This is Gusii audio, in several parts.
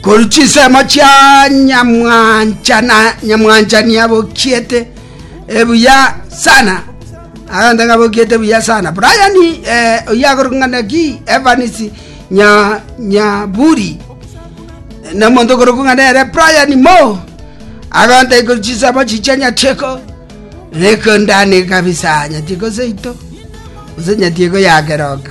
Korwa chinsemo chia nyamwancha na nyamwanchani abokiete buya sana, agento ng'a abokiete buya sana. Brian oyio akorokwa ng'a Naki Evans Nyaburi, na omonto okorokwa ng'a nere Brian Mo, agontaki korwa chinsemo echi chia Nyatieko, Rekondane kabisa Nyatieko seito, gose Nyatieko ya keroka.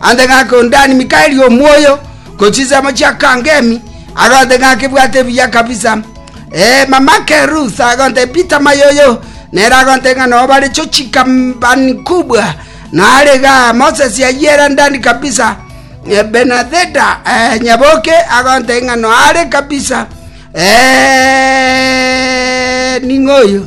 Ande ng'ake onde aanie Mikaeli omwoyo, korwa chinsemo chia Kangemi, agonte ng'ake ebwate ebiya kabisa. Ee, mama Kerus agonte Peter Mayoyo, nere agonte ng'a noo bare chochika mbani kubwa, na are iga Moses yayiera ndani kabisa. Ee, Benadheda ee, nyaboke agonte ng'a noo are kabisa. Ee, ning'oyo.